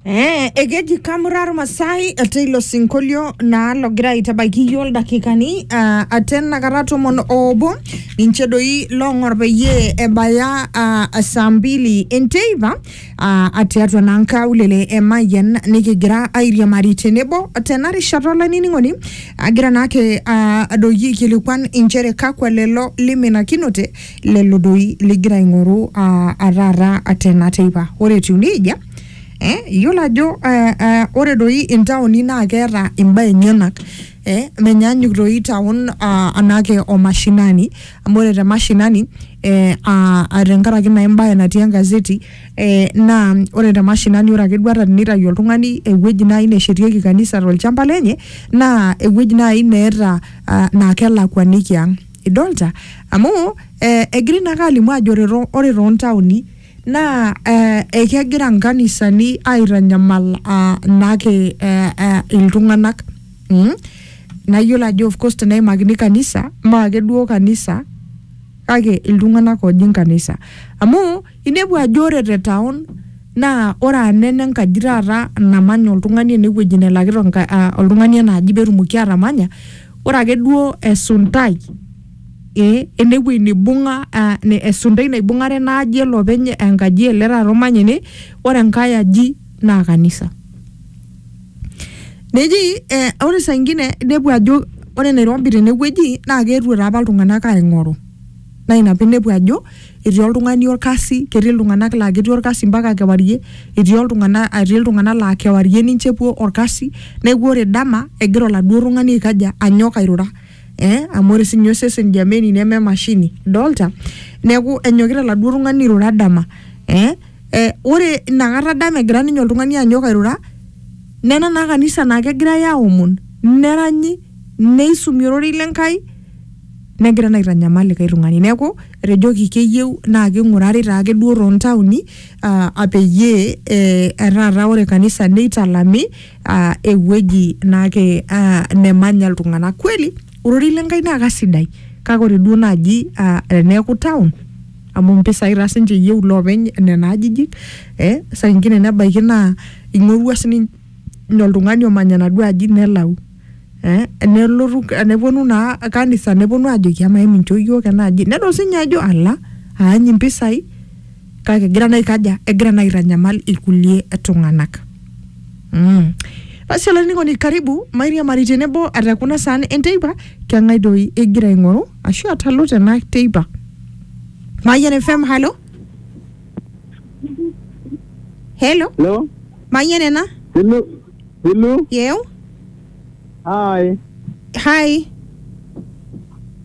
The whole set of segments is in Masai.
Eh, ekeji kamurar masai ate ilo sinkolio naa logira aitabaiki iyio ildakikani uh, ate nakata tomon oobo ninche doi loong'or peyie ebaya uh, saa mbili enteipa uh, tiatua naa nkaulele e Mayian nikigira airiamari tenebo tena rishata olainining'oni agira naake uh, adoiki aikilikuan inchere kakwa lelo liminakinote lelo doi ligira aing'oru uh, ataata tena teipa ore etiu nejia eh, iyiolo ajo uh, uh, ore doi intaoni naa keeta imbaa enyenak eh, menyaanyuk doi taon uh, anake o mashinani amu ore te mashinani eh, uh, tenkaraki naa embaye natii engazeti eh, naa ore te mashinani ore ake duo ata tenitayu oltung'ani ewueji naaji neshetieki kanisa tolchamba lenye naa ewueji naaji neeta uh, naa kelakuaniki ang' Idolta? Amu eh, egirai naake alimu ajo ore too- ore toontaoni naa eh, ekegira nkanisani aitanyamal ah, naake eh, eh, iltung'anak mm? nayiolo ajo of course teneimakini kanisa maake duo kanisa kake iltung'anak ooji nkanisa amu Inepu ajo ore te town naa ore anaa ene nkaji taata namanya oltung'ani ene wueji nelakita enka- ah, oltung'ani ena aji petumoki atamanya ore ake duo esuntai eh, enewuei nibung'a ah, ne- esuntai naibung'are ena aji ele openy enkaji ele taata omanya ene ore enkae aji naa kanisa neji eh, ore saingine inepu ajo ore nairobi tenewueji naa keetuo taapa iltung'anak aing'oru. naa ina pinepu ajo etii oltung'ani orkasi ketii iltung'anak laa ketii orkasi mpaka kewarie etii oltung'ana etii iltung'anak laa kewarie ninche epuo orkasi neeku ore dama egira oladuo tung'ani aikaja anyok airura eh amu ore sinye osesen jameni neme emashini idolta neeku enyokita oladuo tung'ani airura dama eh, eh ore inakata dama egira ninye oltung'ani anyok airura nena naa kanisa naa kegirae aomon neranyi neisumi ororei le Nkai negira naa aitanyamal likae tung'ani neeku etejoki keyieu naa king'urari taake duo toontaoni ah, ah, peyie eh, taata ore kanisa neitalami ah, ewueji naake ah, nemanya iltung'anak kweli ororei le Nkai naa kasidai kake ore duo naaji ah, teneeku town amu mpisai taa sinche eyieu iloopeny nena ajijik eh, saa ingine nebaiki naa ing'orua sininche ninye oltung'ani omanya enaduo aji nelau eh, nelotu neponu naa kanisa neponu ajoki amaa emincho iyiok ena aji nedol sinye ajo ala aany impisai kake egira naa aikaja egira naa aitanyamal ilkulie tung'anak mm. basi olainining'oni karibu mairiamari tenebo ata kuna saan enteipa keng'ae doi igira aing'oru ashu atalu tena teipa mayian fm halo helo Hello? Mayieu nena. Pilu, pilu. Yeu. Hai. Hai.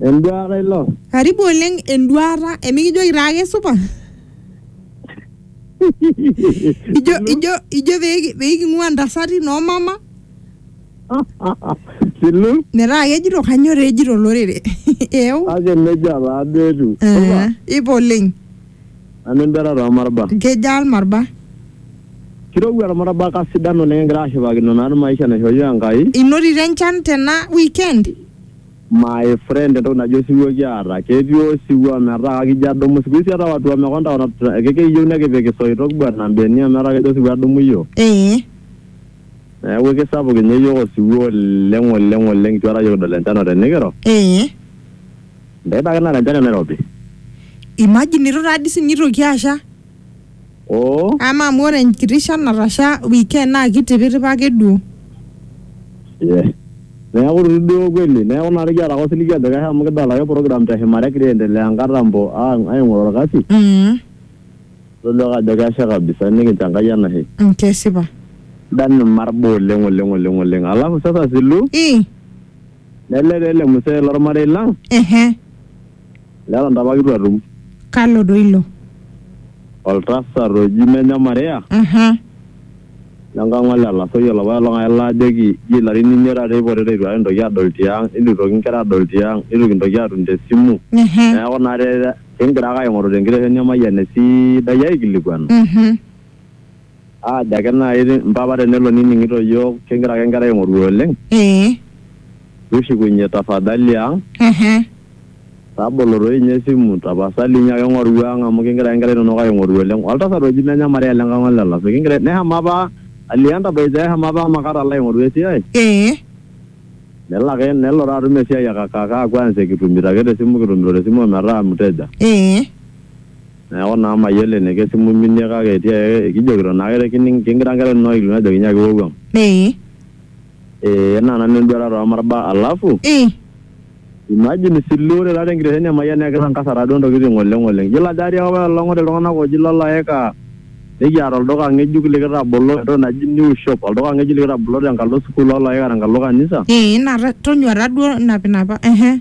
Enduata ilo. Karibu oleng enduata. Emikijoki taa ake supa. ijo, ijo, ijo peeking'ua ntasati noo mama. Pilu. Metaa kejito kanyoo taa ejito olorere. Yeu. Kake nejia taa duo etiu. Ipa oleng. Nanu emberat oo marba. Nkejaa ilmarba. Kirowua ilmarba kasidan oleng kigira ashipakino naa maisha naishooyio Enkai. Inotito enchan tena weekend? My friend entoki naji osiwuo kiata. Ketii osiwuo ometaa kakijo adumu. Siku hizi ata watu wamekonda wanatuta ekiyieu nikipik isoitok bwana mbenia metaa kejo osiwuo adumu iyiook. Ee. Neeku ekisapuk ninye iyiook osiwuo oleng oleng oleng eitu aikata iyiook kidol enchan otenikiro. Ee. Ntaipa ake nara enchan enairobi. Imagine itu taa dii sinye itoki asha. Oo. Ama amu ore enkiti shan natasha weekend naa kitipitipa ake duo. Yes. Neeku itu duo kweli. Neeku naa nikiata ake osiligi ajo kesha amu kidolta ake program te shumata egira aendelea nkatambo ang aing'oru orkasi. Mm. Todua ake ajo kesha kabisa nikincho Enkai enashe. Mm kesipa. Sidan irmarbo oleng oleng oleng oleng. Alafu sasa Silu. Ii. Nele taa ele mzee lormarei lang Ehe. leton taa apa kitu atum. Kalo doi ilo? Oltasat oji Menye Maria Aha. lenkang ole Lasoi olopae olong'ae laajoki ji ilarin imiet taata eipotita eitu aikata kintoki adol tiang, eitu eitoki nkera adol tiang, eitu kintoki atum tesimu. Ehe. Neeku naa te- kingira ake aing'oru tenkitesheni emayian esidai aikilikuanu. Mhm. Aajo ake naaji mpapa tenelo nining'ito iyiook kigira ake nkera aing'oru oleng. Ee. Tushukunye tafadhali ang. Ehe. Tabolo toi ninye esimu tapasali inyo ake ing'oru ang amu kigira ake nkera inonok aing'oru oleng. Oltasat oji Menya Maria le Nkang'o le Lasso kigira neshomo apa alio entabaitai eshomo apa Makati alo aing'oru esiai. Ee. Nelo ake nelo taa atum esiai e kaka kaa kwanza kitumito ake te simu kitumito te simu ometaa mteja. Ee. Neaku naa mayiolo eniko esimu iminie kake etii ake kijokito naake te kining kingira nkera inonok aikilikuan ajoki nyaaki iwuang'uang. Ee. Ee naa nanu enduata too marba alafu. Ii. Imagine isilu ore taata enkitesheni e Mayian naa kitangasa taa duo ntokitin oleng oleng. Iyiolo ajo atii apa apailong ore iltung'anak ooji lo Laeka nikiata olduka ng'ejuk likitabolo entoki naji New shop olduka ng'ejuk likitabolo tenkalo sukuul o Laeka tenkalo kanisa. Ee naa tonyua taa duo inapinapa ehe.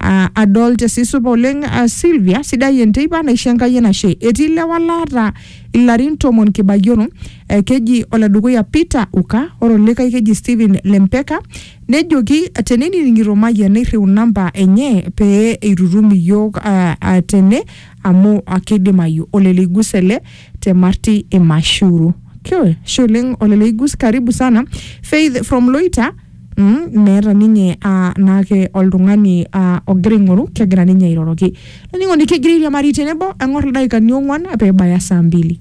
Aa adol tesiai supa oleng aa Sylvia, sidai enteipa naisho Enkai enashe. Etii ilewa laata ilarin tomon kibayioro, eh, keji oledukuya Peter Uka, ore olikae keji Stephen Lempeka, nejoki tenining'ito Mayian neirriu namba enye pee eitutum iyiook ah, ah, tene amu ah, keidimayu. Ole Leigus ele te Marti Imashuru. Ashe oleng ole Leigus, karibu sana. Faith from Loita. Mm, meeta ninye ah, naake oltung'ani ah, ogira aing'oru kegira ninye airoroki olainining'oni kegira airiamari tenebo eng'or ildaikani ong'uan peebaya saa mbili